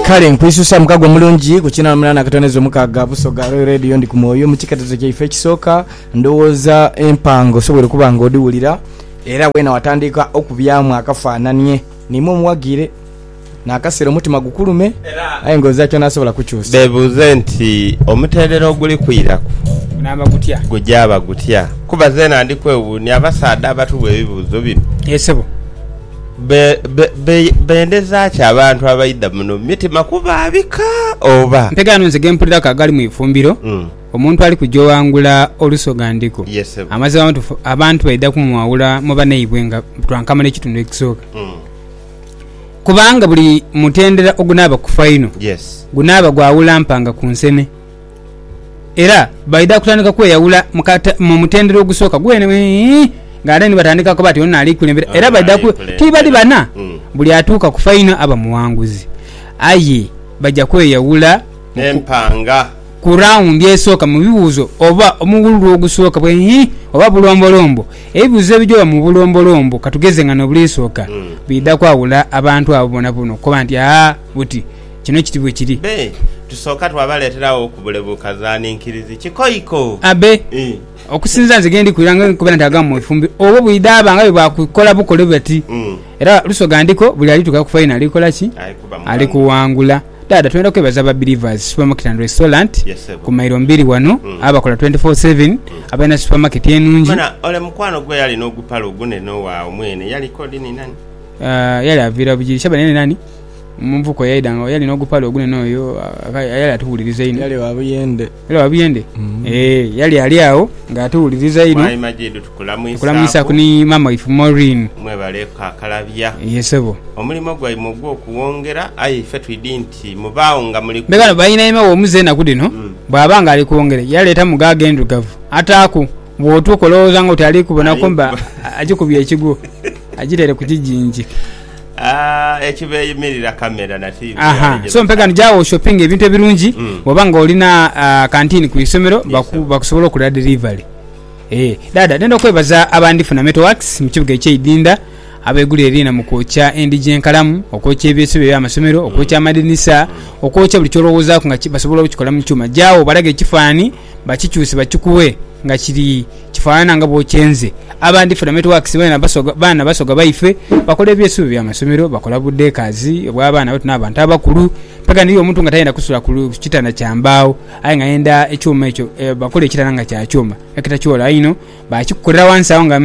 Kale nkwisusa mukago omulungi ku kinaana munana akatono ezo mukaaga Busoga Royal Radio ndi ku mwoyo mu kiketezo kyaife ekisooka ndowooza empango osobwere okuba nga odhiwulira era weena watandika okubyamu akafaananie niimwe omuwagiire n'akaseera omutima gukulume aye nga ozaaki onaasobola kukyusa. Beebuuze nti, Omutendera oguli kwiraku Gunaaba gutya? gujaaba gutya? Kuba zeena ndi kwewuunia abasaadha abatubwa ebibuuzo bino. Yee sebo. Bendeza ki abantu abaidha muno mu mitima kubaabika? Oba. Ntegeera nonze ge mpuliraku agali mu ifumbiro, omuntu ali kuja owangula olusoghandhiko, amazima amatuufu abantu baidha kumwawula mu banaibwe nga butwankamala ekitundu ekisooka. Kubanga buli mutendera ogunaaba ku faino, gunaaba gwa wula mpanga ku nsene. Era baidha kutandika kweyawula mu mutendera ogusooka gwene ng'ate ni batandika kuba ti ono naali kulembera. Era baidha ku tibali bana, hmm. buli atuuka ku faino aba muwanguzi. Aye baja kweyawula n'empanga ku rawundi esooka mu bibuuzo oba omuwululu ogusooka bwe oba bulombolombo. Ebibuuzo ebijoba mu bulombolombo katugeze nga n'obuliisooka, hmm. biidha kwawula abantu abo bonabona okukoba nti aa buti. Kino kiti bwe kiri. Be, tusooka twabaleetera agho ku bule bukazaaninkirizi. Kikoiko. Abe. Okusinzira nze ghe ndi kwira nga nkubeera nti agamu mu ifumbi obwo bwidha aba nga bwe baakukola bukole bati. Era Lusoga ndiko buli alituuka ku faino ali kola ki? Ali kuwangula. Dhaadha twendha kwebaza ba Believers Supermarket and Restaurant ku mailo mbiri ghano abakola twenti foo seveni, abalina supamaketi enungi. Mbona ole mukwano gwe eyali n'ogupale ogunene owaagho mwene yaliko dhi ni nani? Yali aviira Bugiri. Shaban yali nani? Mu nvuko eyaidha nga yali n'ogupale ogunene oyo yali atuwuliriza inho. Yali wa buyende. Yali wa buyende? Ee, yali ali agho nga atuwuliriza inho. Mwami Majidu tukulamwisaaku. Tukulamwisaaku ni maama waife Maureen. Mwebale kakalabya. Ye ssebo. Omulimo gwaimwe ogw'okuwongera, aye ife twidhi nti mubaagho nga muli ku. Mbega no bainaime w'omuze enaku dhino bw'aba nga ali kwongera yaleetamu gaage endhirugavu ataaku, bw'otuuka olowooza ng'oti ali kubonaku mba agikubye ekigwo agitaire ku kijingi. Aha so mpega ni gyawo shopping ebintu ebirungi mm. bwoba nga olina uh, kantini ku isomero bakusobola okulira delivery eh, dada nenda okwebaza abandi funa metowax mu kibuga ekyeidinda abegulira erina mu kwokya endigi enkalamu okwokya ebyesibe byamasomero okwokya mm. amadinisa mm. okwokya buli kyolowoozaku nga basobola okukikola mu kyuma gyawo balaga ekifaani Bakikyuse bakikuwe nga kiri kifanana nga bwokyenze. Abandi for networks bene basoga baana basoga baife bakola ebyesuubi bya masomero, bakola bu deckers obwa baana baitu na bantu abakulu. Mpaka niriyo omuntu nga tayenda kusula ku kitanda kya mbaawo aye nga ayenda ekyuma ekyo bakola ekitanda nga kya kyuma ekitakyoola einho bakikukolera wansi agho nga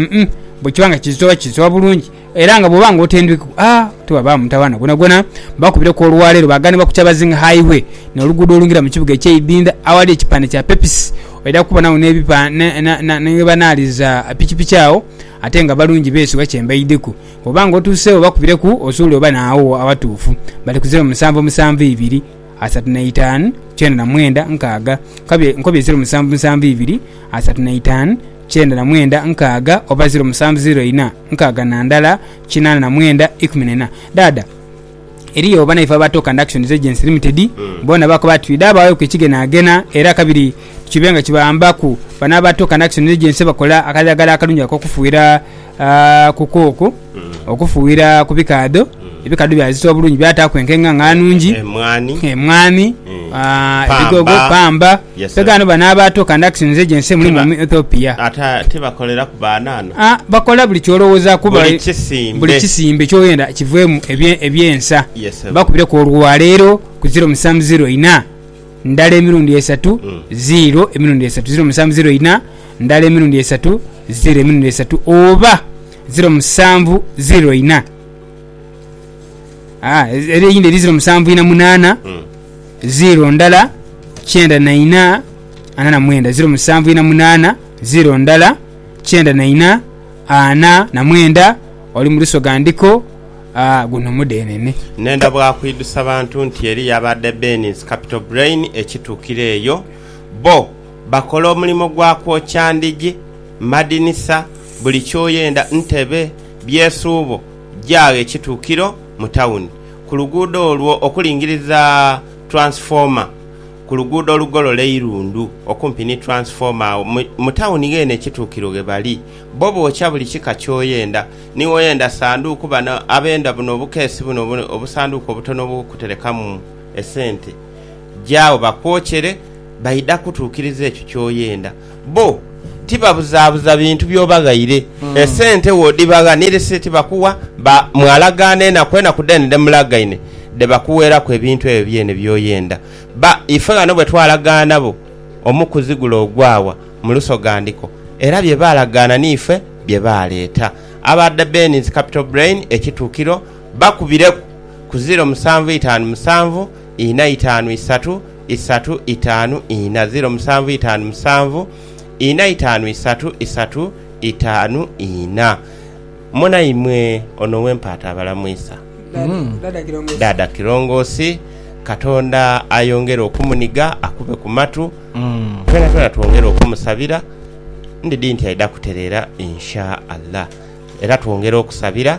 bwekiba nga kizitowa kizitowa bulungi. Era nga bwoba nga otendwiku a tewabaawo mutawaana gwonagwona, bakubire ku olwaleero baaganibwa ku Kyabazing Highway n'oluguudo olungira mu kibuga eky'e Idinda awali ekipande kya Pepsi. Oidha kubonagho ni ghebanaaliza pikipiki agho ate nga balungi beesigwa kyembaidheku. Bwoba nga otuuseegho bakubireku osuule oba naagho awatuufu. Bali ku zeero musanvu musanvu ibiri, asatu na itaanu, kyenda na mwenda, nkaaga. Nkobye zeero musanvu musanvu ibiri, asatu na itaanu, kyenda na mwenda, nkaaga oba zeero musanvu zeero ina. nkaaga na ndala kinaana na mwenda ikumi na ina. Dhaadha, eriyo banaife aba Toka and Actions Agency Limited, boona bakoba ati twidhe abagheku ekigenagena era kabiri kibe nga kibawambaku. Bano aba Toka and Actions Agency bakola akadhagala akalungi ak'okufuuyira ku kooko, okufuuyira ku bikaadho, Ebikadho byazita obulungi byataaku enkenga nga nnungi, emwaani, ebigogo, pamba. Mpegho ghano bano abaato kandakisi nze gye nse mulimu omu Ethiopia. Tibakoleraku banana? Aa, bakola buli ky'olowooza kuba buli kisimbe ky'oyenda kiveemu eby'ensa. Mbakubireku olwaleero ku ziro musanvu ziro ina, ndala emirundi esatu, ziiro emirundi esatu, ziro musanvu ziro ina, ndala emirundi esatu, ziiro emirundi esatu oba ziro musanvu ziro ina. Ah, ez- era eyindi eri ziro musanvu ina munaana Mm. ziro ndala kyenda na ina ana na mwenda ziro musanvu ina munaana ziro ndala kyenda na ina ana na mwenda oli mu lusoga ndiko ah, guno mudhenene Nenda bwakwidusa bantu nti eri yabadde Benin's Capital Brain ekitukira eyo bo bakola omulimo gwa kwokya ndhigi, madinisa, buli kyoyenda ntebe Byesuubo gyaagho ekituukiro mu tawuni, ku luguudo olwo okulingiriza Transformer, ku luguudo olugolola eirundu okumpi ni Transformer. Agho mu tawuni ghene ekituukiro ghe bali. Bo bookya buli kika ky'oyenda. Ni woyenda sanduuku, bano abenda buno obukeesi buno obusanduuku obutono obw'okuterekamu esente, gyaagho bakwokyere. Baidha kutuukiriza ekyo ky'oyenda. Bo tibabuzaabuza bintu by'obaghaire. Esente bw'odhibaghanire si ti bakuwa, ba mwalagaana enaku enaku dheene dhe mulagaine dhe bakuweeraku ebintu ebyo byene by'oyenda. Ba ife ghano bwe twalagaana bo omu kuzigula ogwawa mu Lusogandiko, era bye baalagaana n'ife bye baaleeta. Aba The Benny's Capital Brain, Ekituukiro, bakubireku ku ziiro musanvu itaanu musanvu, ina itaanu isatu, isatu itaanu ina ziro musanvu itaanu musanvu ina itaanu isatu isatu itaanu ina. Monaimwe ono wempaata abalamwisa Dhaadha Kirongosi katonda ayongere okumuniga akube ku matu twena twena twongere okumusabira ndidhi nti aidha kutereera Insha Allah era twongere okusabira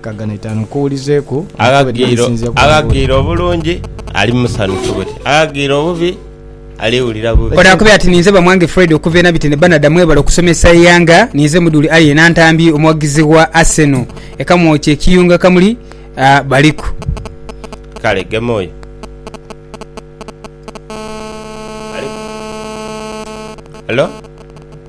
Kagano itaanu kuwulizeeku enkobe dh'erisinzia ku wangulu. Aghaghire obulungi ali musanhufu buti, aghaghire obubi aliwulira bubi. Ono akobye ati ninze Bamwange Fred okuva e Nabitene Banada mwebale okusomesa eighanga ninze mudhuli aye Nantambi omuwagizi wa Arsenal e Kamwokya ekiyunga kamuli baliku. Kale gema oyo aliku. Hello.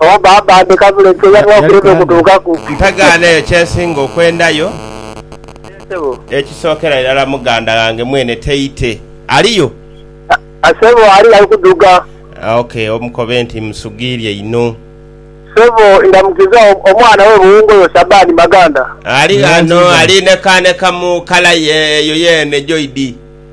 Oba baaba ate kabula ekyo yalina okulema okutuukaku. Ntagaana eyo kyensinga okwendayo. Yee sebo. Ekisookera irala muganda ghange mwene Teite aliyo? A, sebo aliyo ali kudhuga. A, ok, omukobe nti mmusugiirye inho. Sebo, ndamukiza o, omwana we buwunga oyo Shabani Maganda. Ali ghano, ali nekaaneka mu kala ye eyo yeene, Joidi.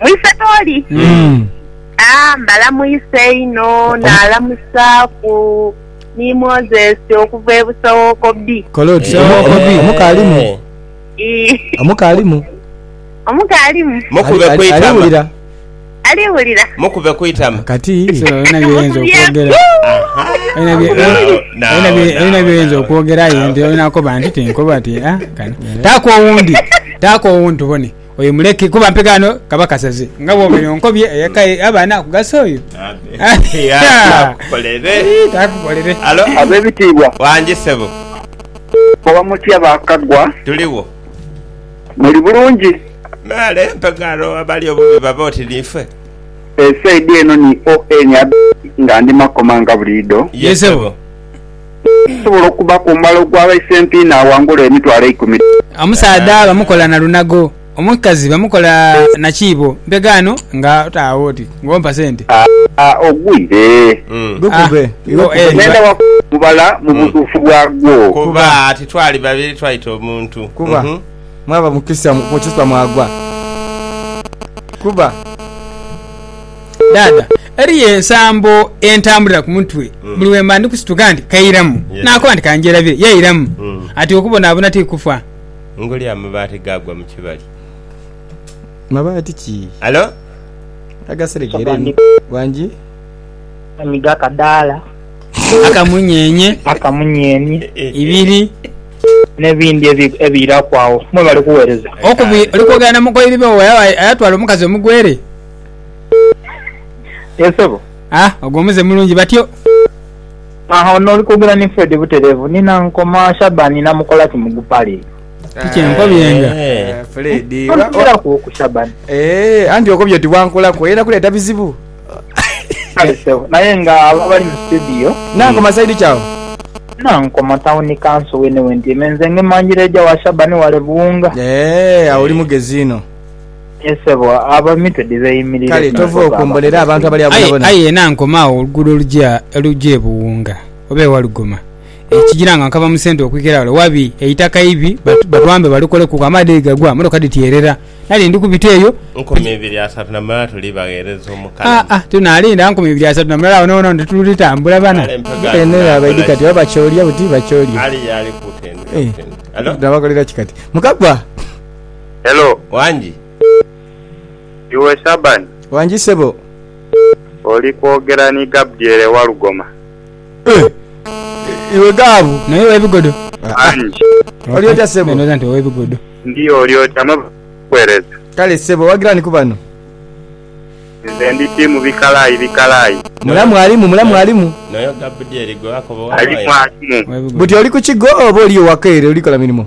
Mwise tooli? Ah, mbalamuisa einho, naalamusa ku ni Moses okuva e Busowookobi. Kola oti, Eh, omu- omu- eh. omuka alimu? Ii, Omuka alimu? Omuka alimu? Ali- Mukube ali- ku itama. aliwulira? Aliwulira? Mukube ku itama. Kati Alina byoyinza okwogera. Alina bye- Now, alina bye- now, alina byoyinza now. okwogera aye nti olina koba nti tinkoba ti ah, kano. Taako owundi. Taako owundi tubone. Oyo muleke kuba mpeke ano kaba kasaze nga bwobeire onkobye eyeka ye aba anakugasa oyo. Takukolere. Abebitiibwa. Wangi sebo. Mukoba mutya ba Kaggwa? Tuligho. Muli bulungi? Me ale mpeke aro abali obubi babe oti niife. Esaidi eno ni ON Abedi nga ndi Makoma nga buliidho. Ye sebo. Osobola okuba ku mala ogwa baisempi n'awangula emitwalo eikumi dha. Omusaadha bamukola na lunago, omukazi bamukola na kiibo. Mpegho ano nga otaagho oti ng'ompa sente. A, ogwire. Gukube, iwe kuba iba. Ng'enda wa kuba omubala mu butuufu bwagwo. Kuba ati twali babiri twaita omuntu. Kuba, mwaba mu kisa, mu kisa mwagwa. Kuba. Dhaadha, eriyo ensambo entambulira ku mutwe buli bwe mba ndi kusituka nti kairamu, naakoba nti kangyerabire, yairamu. Ati okubonaabona ti kufa. Ngoli amabaati gaagwa mu kibali. Mabaati ki? Halo? Agaseregeere ni wangi. Ni ga kadaala. Akamunyeenye. Akamunyeenye. Ibiri. N'ebindi ebiiraku agho. Mwebale kuweereza. Okubiri oli kwogera na mukoiri be oyo ayatwala omukazi omugwere? Yes sebo. Ah ogwo muze mulungi batyo. Aha ono oli kwogera ni Fred buterevu ni Nankoma Shaban namukolaki mu gupale. Kiki enkobyenga. Eh, Fred. Tonziraku oku Shaban. Eh, anti okobye oti wankolaku oyenda kuleta bizibu. Kale sebo, naye nga abo abali mu studio. Nankoma side ki awo? Nankoma town council wene wentyaime nze nge manjireja wa Shaban wale Buwunga. Eh, awo oli mugezi ino. Aye sebo abo emitwe dhibeyimirire. Kale tova okombolera abantu abali agho bonabona. Aye yena nkoma agho oluguudo oluja oluja e Buwunga oba e Walugoma ekigira nga nkava mu centre okwikera wale wabi eitaka ibi batwambe balikoleku amaadhi bwegagwa motoka dhityerera nali ndi kubita eyo Nkoma ibiri asatu na mulala tuli bagheereza Omukalamu. Aa tunalinda nkoma ibiri asatu na mulala wonawona wano tetuli tambula bana. Kale mpe ghaano Eno eyo abaidhi kati oba nakolaki? bakyolya buti bakyolya. Ali y'ali ku tendekero tendekero. Alo? Nabakolera ki kati? Mukagwa! Hello. Wangi. Iwe Shaban. Wangi sebo. Oli kwogera ni Gabdiel e Walugoma. Iwe Gabu. Naye ow'ebigodo. Wangi. Oli otya sebo. Ndhooza nti ow'ebigodo. Ndi oli otya mwe bakuwereza. Kale sebo owagira ni ku bano? Nze ndi tiimu bikalaayi bikalaayi. Mulamu alimu mulamu alimu. Noyo Gabdiel gwe wakoba owa Wire. Alimu alimu. Buti oli ku kigo oba oliyo waka ere oli kola mirimo?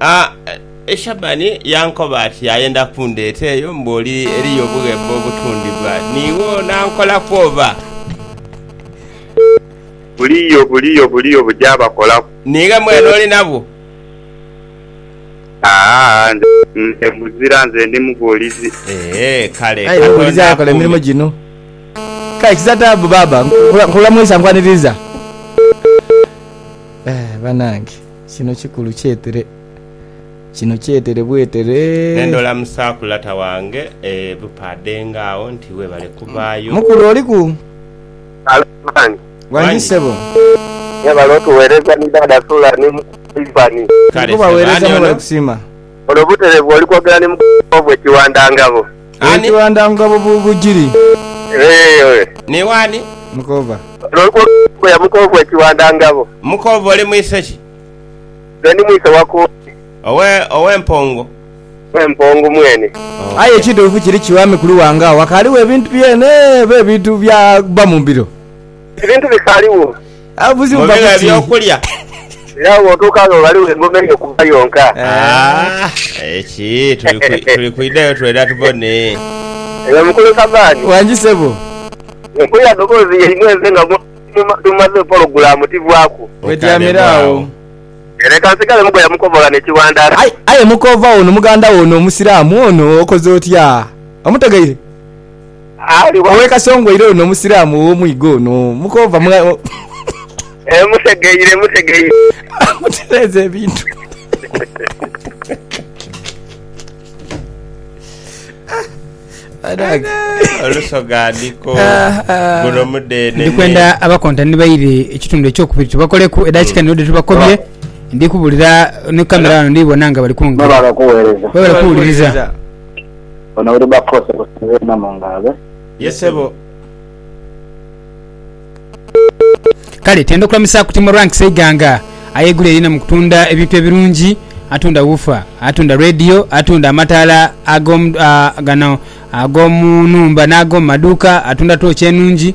Aye Shabani yankoba ati ayenda kundheta eyo mbu oli eriyo obughembo obutundhibwa niiwo onankolaku oba? Buliyo, buliyo, buliyo buja bakolaku. Niiwe mwene oli nabwo? Aa, nze muzira, nze ndi mughuulizi. Ee, kale Aye mughuulizi Katonda akola emirimo akuume. gino. Kale kiza taabu baaba. Nkula, nkula mwisa nkwaniriza. Eh, banange. Kino kikulu kyetere. Kino kyetere bwetere. Nendola musakulata wange e bupaade nga agho nti webale kubaayo. Mukulu oliku? Halo man. Wangi sebo. Mwebale otuwereza ni dada sula ni Ivan. Kale sebo ani ono? olwo butereevu oli kwogera ni mukazi wo bwe kiwandangabo. Bwe kiwandangabo bu bujiri. Eeh. Ni wani? Mukova. Olwo oli kwogera ni mbuya muko bwe kiwandangabo. Mukova oli mwise ki? Nze ndi mwise wa Kooki. Owe, owe Mpongo. Owe Mpongo mwene. Oh. Aye ekituufu kiri ki wami Kuluwanga, wakaaliwo ebintu byene oba ebintu bya bba mu mbiro? Ebintu bisaligho. Mu biba eby'okulya. Era bw'otuuka agho ghaligho engoma ey'okuva yonka. Ah, eki tuli kwi- tuli kwidhayo twena tubone. Eyo mukulu Sabani. Wangi sebo. Mpulira doboozi yaimwe nze nga mu- mu- tumaze pologulaamu tivwaku. Wetyamire agho. Leka nsigale mugoya mukobola ne kiwandara. Aye, aye mukoova ono muganda wo ono omusiraamu ono okoze otya? Omutegeire? Aliwa? Owe Kasongoire ono omusiramu owo mwiga ono mukoova mwa. Eeh mutegeire mutegeire. Mutereeze ebintu. Banange. Olusoga ndiko. Guno mudeenene. Ndi kwenda abakontani baire ekitundu ekyokubiri tubakoleku edakika niyo dhitubakobye. Ndi kubulira ni camera wano ndhi bona nga bali kungira. Mwebale kuwereza. Mwebale kuwuliriza. Ono uri ba force kusibwa ena mungalo be. Ye sebo. Kale tenda okulamisaaku Timo Rank Seiganga ayegula erina mu kutunda ebintu ebirungi, atunda wuufa, atunda leediyo, atunda amataala ag'omu gano ag'omu nhumba n'ag'omu maduuka, atunda tooci enungi,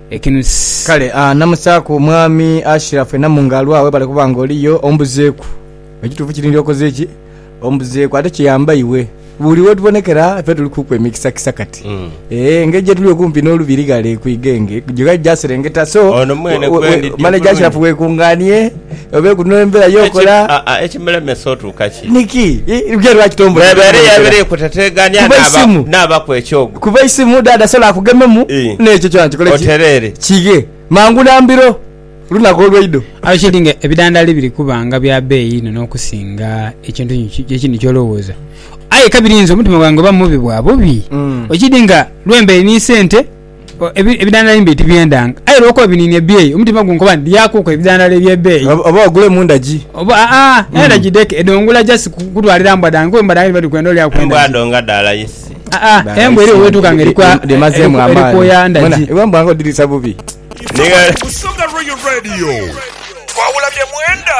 ekinusi. Kale a namusaaku mwami Ashiraf enamu nga alwaa webale kuba nga oliyo ombuzeeku ekituufu kiri nti okoze ki? Ombuzeeku ate kiyamba iwe buli wetubonekera ffe tuli kuku emikisa kisa kati eeh engeri jetuli okumpi nolubiri ghale ku igenge gye ghali gyaserengeta so Ono mwene kwendi ddi manager Ashiraf obulungi? wekunganie. Obe guno embera yo kola. Ekimulemesa otuuka ki? Niki? Lugero lwaki tombonera? Ebeera eyabire kutetegania nabaku ekyogo. Kuba eisimu dada asobola akugememu nekyo kyona kikole ki? Oterere. Kighe mangu na mbiro lunaku olweido. Aye kiri nga ebidandali biri kuba nga bya beeyi inho n'okusinga ekintu ekindi ky'olowooza. Aye ka birinze omutima gwange oba mubi bwa bubi. Kiri nga lwembeire ni sente. Ebidhandhalo embeeyi tibyendanga, aye olw'okuba biniini ebyeeyi, omutima gunkoba nti Lyaakuku ebidhandhalo eby'ebeeyi. Oba ogule mu ndagi. Oba aa, era ndagi dheke, edho ngula just kutwalira mbwa dhange, kuba embwa dhange dhiba dhiri kwenda olyaaku endagi. Embwa dho nga dha layisi. Aa, embwa eriyo weetuuka nga eri kwoya ndagi. Iwe mbwa nga odhiriisa bubi. Busoga Royal Radio, twawula bye mwenda.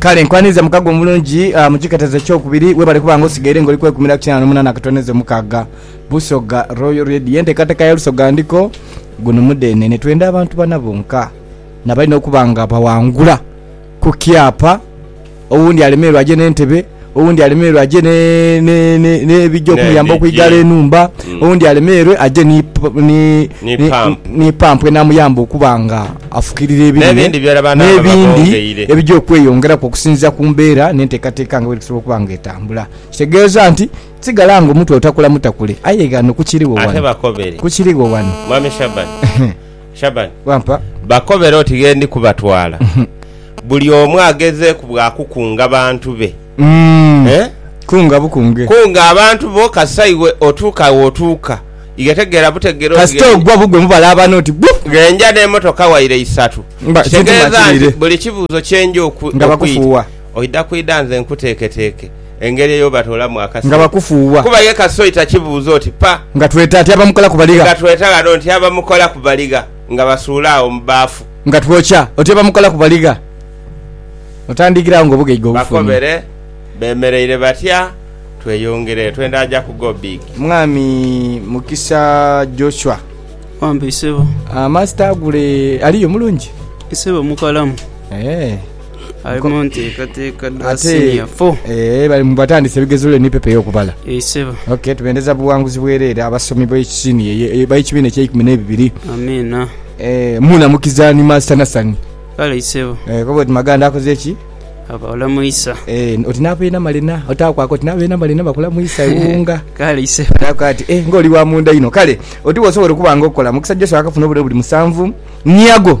Kale nkwaniza mukago omulungi ah, mu kiketezo ekyokubiri webale kuba nga osigaire nga oli kwekumira ku kinaana n'omunaana akatondeza omukaaga Busoga Royal Radio enteekateeka ya Lusoga Ndiko guno mudeenene twenda abantu bana bonka nabalina okuba nga bawangula ku kyapa Owundi alemererwa aje n'entebe, owundi alemererwa aje n'ebija okumuyamba okwigala enhumba, mm. owundi alemererwe aje ni pampu enamuyamba okuba nga afukirira ebirime n'ebindi ebija okweyongeraku okusinzira ku mbeera n'enteekateeka nga bweri kusobola okuba nga etambula. Kitegeeza nti sigala nga omutwe otakula mutakule aye ghano kukiriwo wano. Kukiriwo wano. Mwami Shaban. Shaban, Wampa. bakobere oti ghe ndi kubatwala. Buli omu agezeeku bwa kukunga bantu be. Umm. Eh? Kunga bukunge. Kunga abantu bo kasita iwe otuuka we otuuka. Ighe tegeera butegeere oti Kasita ghe ogwa bugwe mubala abana oti buu! ghe nja n'emotoka waire isatu. Mba, kintu Kitegeeza nti makiwire. buli kibuuzo kye nja okwi, Nga okwi, bakufuuwa. oidha kwidha nze nkuteeketeeke. engeri eyobatoolamu nga akasoi bakufuuwa. kuba ye kasoi takibuuza oti pa Nga tweta ati abamukola ku baligha. nga tweta ghano nti abamukola ku baligha nga basuula agho mu baafu. Nga twokya oti abamukola ku baligha. Otandikira agho ng'obugaiga obufunye. Bakobere bemereire batya tweyongere twenda aja ku go big. Mwami Mukisa Joshua. Wampe isebo. Master Agule aliyo mulungi? Isebo mukalamu. Eeh. Ali mu nteekateeka dha Ate- siniya fo. Eh, bali mu batandise ebigezo lule ni pepa ey'okubala Ee, ssebo. ok tubendeza buwanguzi bwereere abasomi b'ekisiniya eye- eye- b'ekibiina ekyeikumi n'ebibiri Amiina. Eh, munamukiza ni master nasani Kale ssebo. Eh, koba oti maganda akoze eki Abawala mu isa. Eh, oti n'abeena malina otakwaka oti n'abeena malina bakula mu isa ewunga Kale ssebo. Nakoa ati eh, ng'oli wa munda inho kale oti bw'osobola okuba nga okola mukisa joshua akafuna obulere buli musanvu niago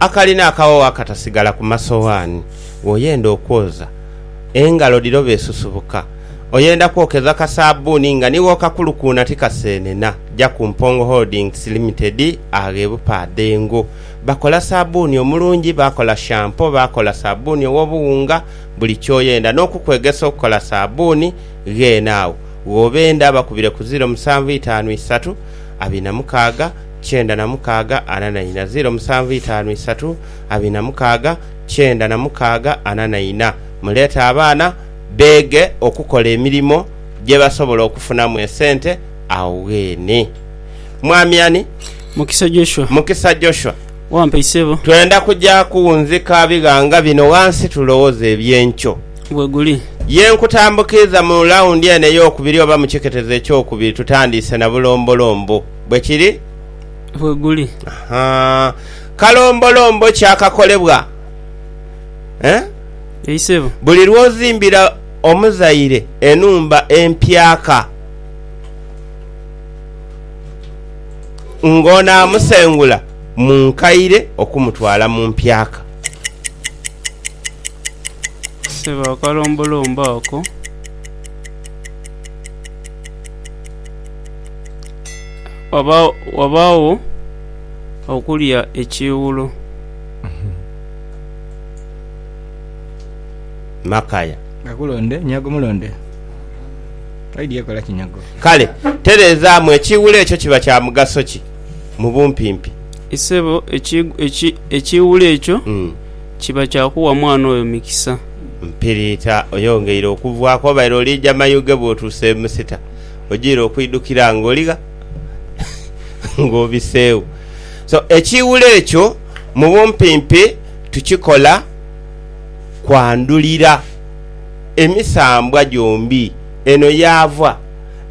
Akalina akaghogho akatasigala ku masoghani bw'oyenda okwoza, engalo dhiro bw'esusubuka, oyenda kwokeza ka saabbuuni nga ni bw'okakulukuuna tikaseenena, ja ku Mpongo Holdings Limited agho e Bupaadhengo. Bakola saabbuuni omulungi, bakola shampo, bakola saabbuuni ow'obuwunga, buli ky'oyenda. N'okukwegesa okukola saabbuuni gheene agho gh'obenda. Bakubire ku ziro musanvu itaanu isatu abiri na mukaaga. kyenda na mukaaga ana na ina ziro musanvu itaanu isatu abiri na mukaaga kyenda na mukaaga ana na ina Muleete abaana beege okukola emirimo gye basobola okufunamu esente agho ghene. Mwami ani? Mukisa Joshua. Mukisa Joshua. Wampa isebo. Twenda kuja kuwunzika bighanga bino ghansi tulowooze eby'enkyo. Bwe guli. Ye nkutambukiiza mu lawundi eno ey'okubiri oba mu kiketezo eky'okubiri tutandiise na bulombolombo. Bwe kiri? Bwe guli. Ha, kalombolombo kyakakolebwa. Eh? Ei, ssebo. Buli lw'ozimbira omuzaire enhumba empyaka, ng'onaamusengula mu nkaire okumutwala mu mpyaka. Ssebo, akalombolombo ako. Ghabaagho okulya ekiiwulo. Kale tereezaamu, ekiiwulo ekyo kiba kya mugaso ki mu bumpimpi? Isebo, ekiiwulo ekyo kiba kya kuwa mwana oyo mikisa. Mpiriita, oyongeire okuvwaaku. Obaire oliija mayuge bw'otuuse e Musita. ojiire okwidhukira nga oligha nga obiseegho. So, ekiiwulo ekyo mu bumpimpi tukikola kwandhulira emisambwa gyombi eno yaava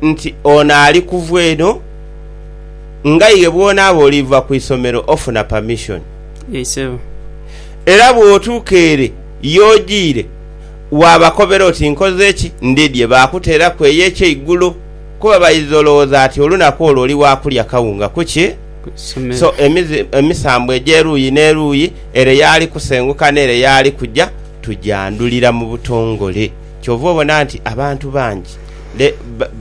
nti ono ali kuva eno ng'aye bw'onaaba oliva ku isomero ofuna permission. Era bw'otuuka ere y'ojiire Waabakobera oti, Nkoze ki? Ndidye baakuteeraku eyo ekyeigulo, kuba baidha olowooza ati olunaku olwo oli wa kulya kawunga ku ki? So emizi emisambwa egy'eruuyi n'eruuyi, ere y'ali kusenguka n'ere y'ali kuja, tujandhulira mu butongole. Kyova obona nti abantu bangi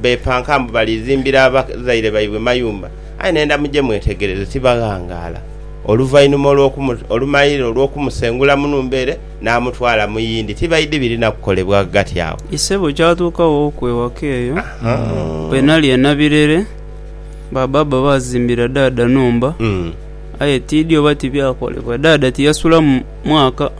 beepanka mbu balizimbira abazaire baibwe mayumba, aye nenda muje mwetegereze, tibaghangaala oluvainhuma olw'okumu, olumaire olw'okumusengula mu nhumba ere. n'amutwala mu yindi, tibaidhi birina kukolebwa ghagati agho. Ise bwe kyatuukagho oku ewaka eyo, bwe nali ena birere, ba bbaabba baazimbira ddaadha nhumba, aye tiidhi oba tibyakolebwa. Ddaadha tiyasulamu mwaka,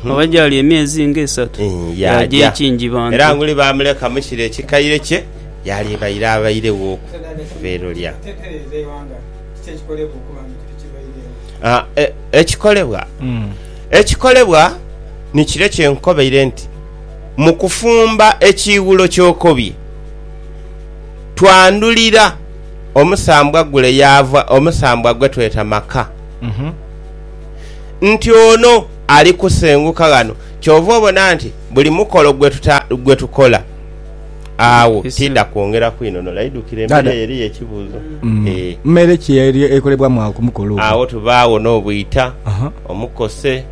oba gyali emyezi nga esatu, yaaja e Kingibantu. Era nguli baamuleka mu kiro ekikaire kye yaalibaire abairegho okuva ere lya. Ekikolebwa. Ekikolebwa ni kire kye nkukobeire nti, mu kufumba ekiiwulo ky'okobye, twandhulira omusambwa gule yaava omusambwa gwe tweta maka. Nti ono ali kusenguka ghano. Kyova obona nti buli mukolo gwe tukola. Agho tiidha kwongera kwinhonhola. Idhukira emere eyo eriyo ekibuuzo. Mere ki ekolebwamu agho ku mukolo ogwo? Agho tubaagho n'obwita, omukose,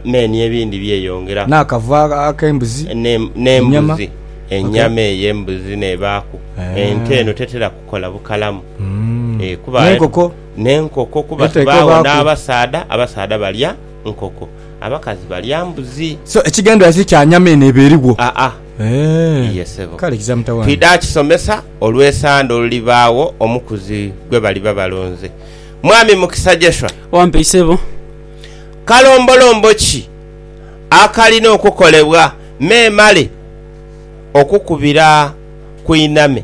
me n'ebindi byeyongeraku. N'akavu ak'embuzi? N'embuzi, enyama ey'embuzi n'ebaaku. Ente eno tetera kukola bukalamu. N'enkoko? N'enkoko kuba tubaagho n'abasaadha, abasaadha balya nkoko. Abakazi balya mbuzi. So ekigendererwa kiri kya nyama eno eba erigho? Aa. Eeh. Iye sebo. Kale kiza mutawaana. Twidha kisomesa olw'esande olulibaagho omukuzi gwe baliba balonze. Mwami Mukisa Jeshua. Wampe isebo. Kalombolombo ki akalina okukolebwa memale okukubira ku inhame?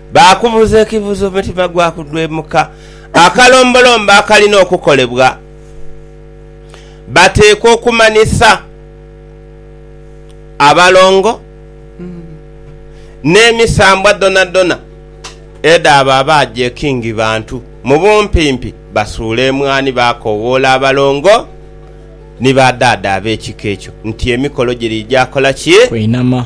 Baakubuuza ekibuuzo omutima gwakudhwemuka, akalombolombo akalina okukolebwa. Bateekwa okumanhisa abalongo n'emisambwa dhonadhona edh'abo abaaja e Kingi Bantu. Mu bumpimpi, basuula emwani baakoowoola abalongo ni badhaadha ab'ekika ekyo nti emikolo giriija kola ki? Kweinama.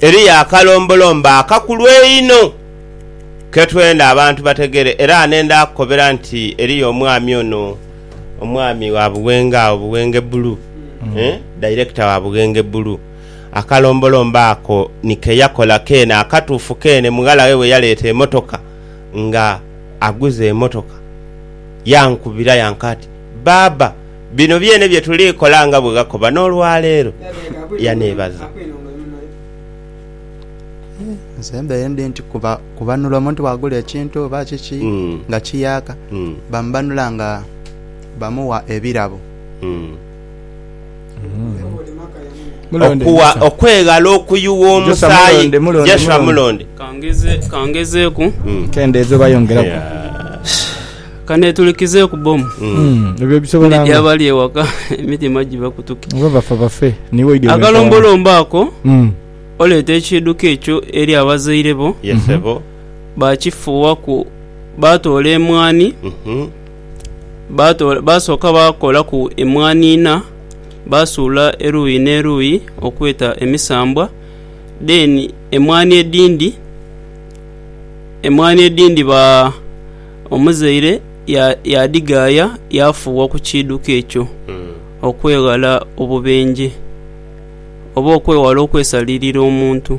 Eriyo akalombolombo akakulu einho ke twenda abantu bategere era nenda kukobera nti eriyo omwami ono, omwami wa Buwenge agho Buwenge Bulu, eeh, Director wa Buwenge Bulu. Akalombolombo ako ni ke yakola keene akatuufu keene mughala we bwe yaleeta emotoka nga aguze emotoka. Yankubira yanka ati, Baaba! bino byene bye tuli kola nga bwe ghakoba n'olwa leero, yaneebaza. Nze mbeere ndi nti kubanula omuntu bw'agula ekintu oba kiki nga kiyaaka, bamubanula nga bamuwa ebirabo. Okuwa okweghala okuyugha omusaayi. Joshua Mulonde. Ka ngezeeku. Kendeeza oba yongeraku. Ka neetulikizeeku bbomu. Ndidhi abali ewaka emitima gibakutuke. Akalombolombo ako, oleeta ekiiduka ekyo eri abazaire bo, baakifuuwaku, baatoola emwaani, baasooka baakolaku emwaani ina, baasuula eruuyi n'eruuyi okweta emisambwa, then emwaani edhindi, emwaani edhindi ba. omuzaire yaadhigaaya yaafuuwa ku kiidhuko ekyo okweghala obubenje, oba okwewala okwesalirira omuntu.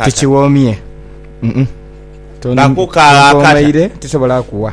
Tukiwoomye, tonkomaire, tisobola kuwa.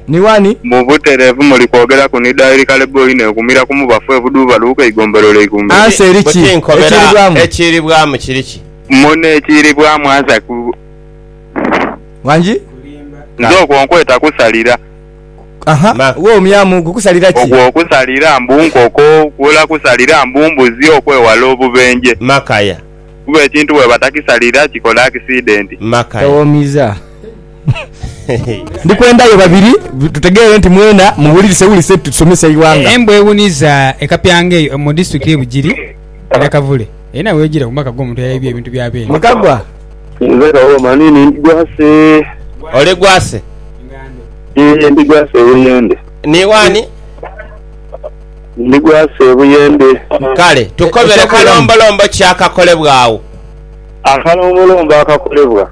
Ni wani. Mu butereevu muli kwogeraku ni dairi kale boo inho ekumira ku mubafu ebuduuba luuka eigombero lye ikumira. Ansa eri ki Buti nkobera ekiiribwamu? ekiiribwamu kiri ki? Munno ekiiribwamu ansa ku. Wangi. Nze okwo nkweta kusalira. Aha, Ma. wo omyamu ogwo kusalira ki? Ogwo kusalira mbu nkoko, kuula kusalira mbu mbuzi okwewala obubenje. Makaya. Kuba ekintu bwebatakisalira kikola akisidenti. Makaya. Tawoomiza. Ndi kwenda yo babiri tutegeere nti mwena muwulirisewulise nti tusomesa eighanga. Embwa ewuniza e Kapyangeyo mu disitulikiti y'e Bugiri e Nakavule erina w'ejiira ku maka g'omuntu eyaibye ebintu bya beene. Mukagwa. Nze Kawoma ni ni Gwase. Oli Gwase? Yee, ndi Gwase e Buyende. Ni wani? Ndi Gwase e Buyende. Kale tukobere kalombolombo ki akakolebwa agho? Akalombolombo akakolebwa.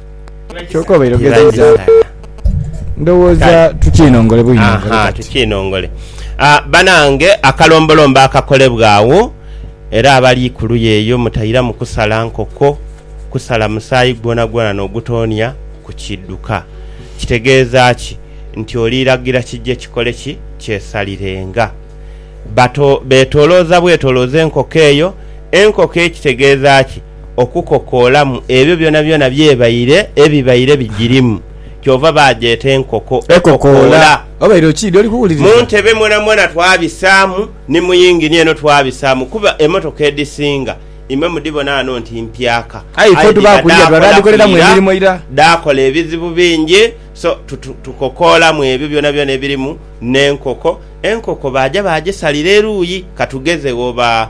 Banange akalombolombo akakolebwa agho era abali kuluya eyo mutairamu kusala nkoko, kusala musaayi gwonagwona nogutonia ku kidhuka. Kitegeza ki? Nti oli lagira kije kikole ki? Kyesalirenga. Betoloza bwetoloza enkoko eyo, enkoko ekitegeza ki? okukokoolamu ebyo byonabyona by'ebaire ebibaire bigirimu. Kyova baagyeta enkoko ekokoola. Mu ntebe mwonamwona twabisaamu, ni mu yingini eno twabisaamu kuba emmotoka edhisinga imwe mudhibona ghano nti mpyaka. Aye dhiba dhaakola ku ira, dhaakola ebizibu bingi. So tukokoolamu ebyo byonabyona ebirimu n'enkoko. Enkoko baaja baagisalira eruuyi, ka tugeze oba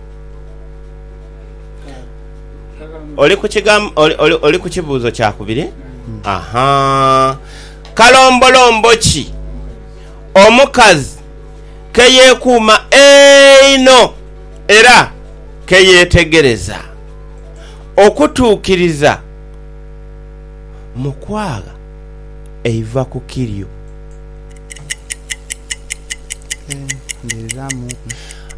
Oli ku oli ku kibuuzo kya kubiri? Aha. Kalombolombo ki omukazi ke yeekuuma einho era ke yeetegereza okutuukiriza mu kwagha eiva ku kiryo?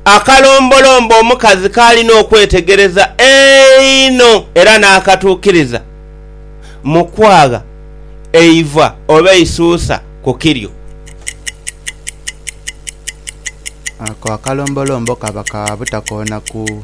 Akalombolombo omukazi k'alina okwetegereza einho era n'akatuukiriza mu kwagha eiva oba eisuusa ku kiryo. Ako akalombolombo kaba ka butakoona ku.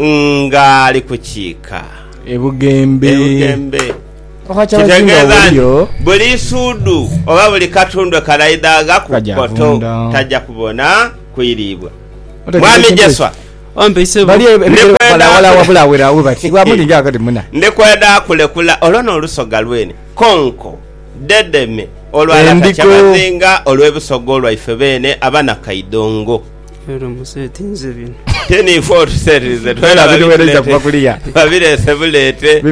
ng'ali kukiika. Ebugembe. Kitegeeza nti buli isuudhu oba buli katundu ekalaidhagha ku koto taja kubona kwiriibwa. Mwami Jeswa, ndi kwenda kulekula olwo n'olusoga lwene konko dedeme olwa Lata Kyamazinga olw'ebisogo lwaife beene Abanakaidongo. babireese buleete.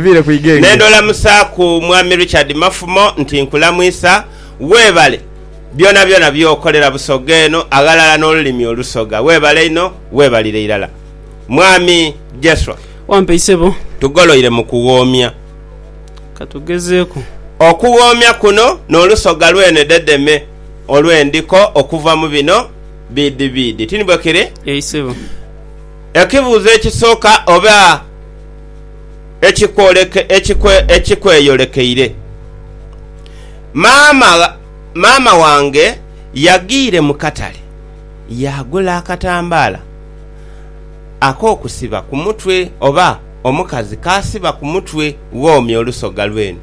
N'endhola musaaku Mwami Richard Mafumo nti nkulamwisa, weebale byonabyona by'okolera Busoga eno aghalala n'olulimi Olusoga. Weebale inho, weebalire irala. Mwami Jeswa. Wampe isebo. Tugoloire mu kughoomya. Katugezeeku. Okughoomya kuno n'Olusoga lwene dedeme olw'endiko okuva mu bino. Biidhi biidhi, ti ni bwe kiri? Yee isebo. Ekibuuzo ekisooka oba ekikweyolekeire, Maama, maama wange yagiire mu katale yaagula akatambaala ak'okusiba ku mutwe oba omukazi k'asiba ku mutwe bw'omya olusoga lw'eno.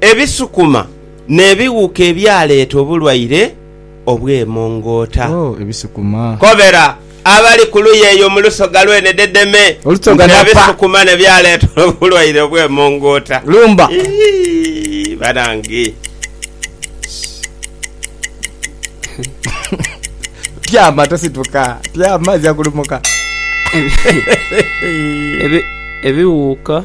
Ebisukuma n'ebighuka ebyaleeta obulwaire obw'emongoota. Oh, ebisukuma! Kobera abali ku luuyi eyo mu lusoga lwene dedeme Olusoga nti, napa. Ebisukuma ne byaleeta obulwaire obw'emongoota. Lumba! Iyii, banange! Tyama, tosituka. Tyama, aja kulumuka. Ebi, ebighuka.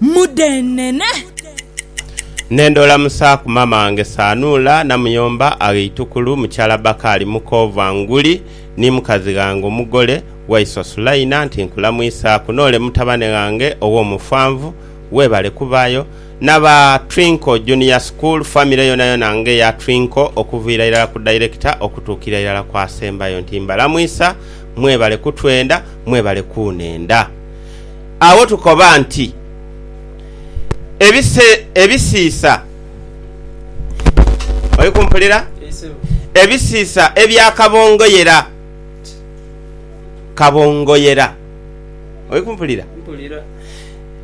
mudheenene. Ne ndoola mu saa ku maama wange Saanuula, namuyomba aghe eitukulu mukyala Bakaali muko Vanguli, ni mukazi ghange omugole, Waiswa Sulaina, nti nkulamwisaaku, n'ole mutabane ghange ow'omufanvu, weebale kubaayo, n'aba Twinkle Junior School famire yoonayona ng'eya Twinkle okuviira irala ku Director okutuukira irala ku asembayo nti mbalamwisa, mwebale kutwenda, mwebale kuunenda. agho tukoba nti ebise, ebisiisa, oli kumpulira? Ebisiisa ebya kabongoyera, kabongoyera, oli kumpulira?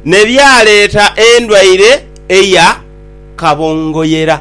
Ne byaleeta endwaire eya kabongoyera.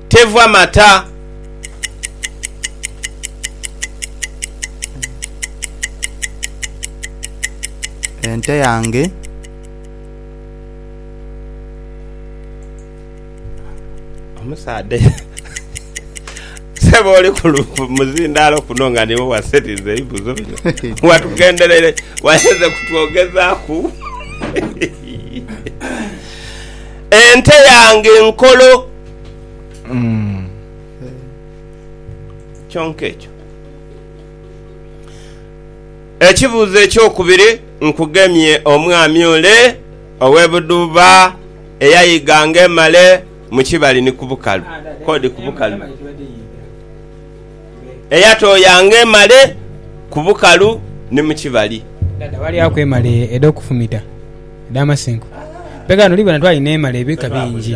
teva mata. Ente yange omusaadha sebo oli ku muzindaalo kuno nga niwe wasetiza ebibuzo bino watugenderere wayenze kutwogezaaku ente yange nkolo Kyonka ekyo Ekibuuzo ekyokubiri nkugemye omwami ole ow'e Budhuba eyayiga ng'emale mu kibali ni ku bukalu, kodi ku bukalu, eyatooya ng'emale ku bukalu ni mu kibali. Dhaadha walyaku emale edh'okufumita edh'amasinku? Peghano, oli bona twali n'emale ebika bingi.